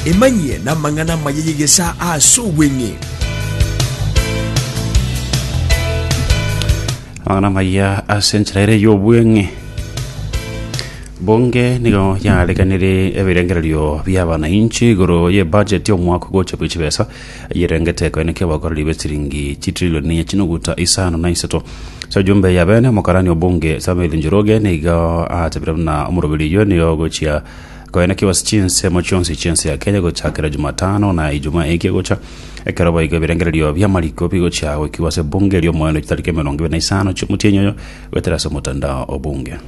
Emanyie namang'ana amaya y'egesaa ase obweng'e. amang'ana amaya ase enchera ere y'obweng'e bunge nigo yareganire ebirengererio bi'abanainchi igoro y'ebudget y'omwaka ogocha bw'echibesa Eyerengete ekoeneka ebokora ribe chiringi chitrilioni chinoguta isano na isato. Ase ejumba eya bene omokarani obunge Samuel Njoroge nigo atebire buna omoroberi oyio nigo ogochia koenekigwa ase chinsemo chionsi chi'ense ya Kenya gochakera Jumatano na Ijumaa eke egocha, ekero boigo ebirengererio bi'amariko bigochia goikigwa ase ebunge ri'omoerio chitariki emerongo ebere na isano chi'omotienyi oyo goetera ase omotandao obunge.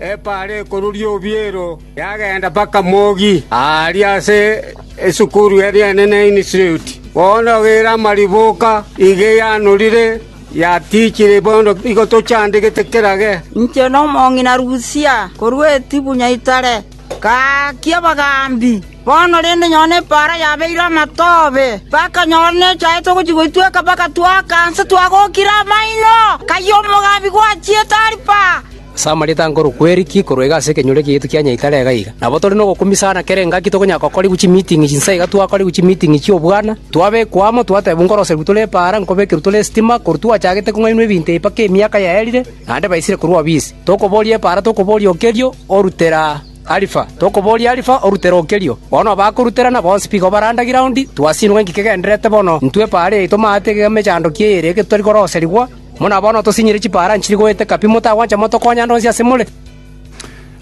Epaara ekoruria obiero yagenda mpaka mogi aaria ase esukuru y'Ebienene Institute. Bono ere amariboka iga yanorire, yatichire bono igo tochandegete kera ge. Inche nomong'ina Lusia, korwa Etibu-Nyaitare, ngaakia abagambi. Bono rende nyora nepaara yabeire amatobe, mpaka nyora nechaete ogochia goitweka mpaka twaaka nse twagokire amaino, kayio omogambi gwachiete Aripa. Ase amarieta nkorokwa Eriki, korwa iga ase ekenyoro ekiaito kia Nyaitare iga iga. Nabo tore nogokumisana kera engaki tokonyara gokorigwa chimiiting'i chinsa iga twakorigwa chimiiting'i chi'obwana, twabekwa amo, twatebiwa nkoroserigwe tore epaara, nkobekerwa tore esitima, korwa twachagete kong'ainwa ebinto ebi mpaka emiaka yaerire, naende baisire korwa obisi. Tokoboria epaara, tokoboria okerio, orutera Alifa, tokoboria Alifa, orutera okerio. Bono abakoruterana bonsi bigo barandagire aondi, twasinigwa inki kegendererete bono, intwe epaara yaito maate iga emechandoki eye ere eke totari koroserigwa, Buna bono tosinyire chipaara nchiri goeteka pi, motagwancha motokonya ande onsi asemore.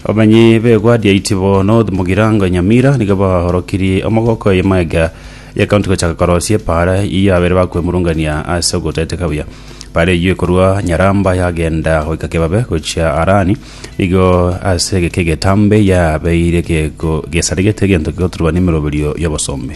Abamenyi b'egwa riaito bo North Mugirango Nyamira nigo baorokirie omogoko oye Maega ye County gochaka korosia epaara eyio abere bakwemurungania ase ogotaeteka buya. Paara eyio ekorwa Nyaramba yagenda goika Kebabe gochia Harani, nigo ase egeke egetambe yabeire geko gesaregete egento gegoturwa nemeroberio y'obosombe.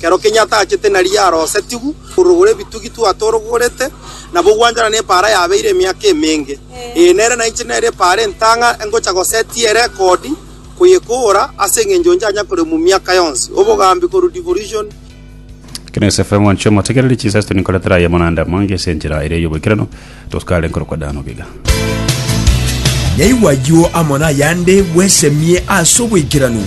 Kero kenyia atachete nari yarosetigwe korogora ebitugi twatorogorete, nabo ogwanchana nepaara yabeire emiaka emenge. Ee, nere nainche nere epaara entang'a engocha gosetia erekodi koyekoora ase engencho nchanya koremwa miaka yonsi. Obogambi korwa Devolution. Ekio ne SF ng'wanchwa motegereri chinsa isto ninkoretera aye amang'anda amange ase enchera eria y'oboikeranu, toskare nkorokwa daano biga. Nyaigwa ayio amo nayande bwesemie ase oboikeranu.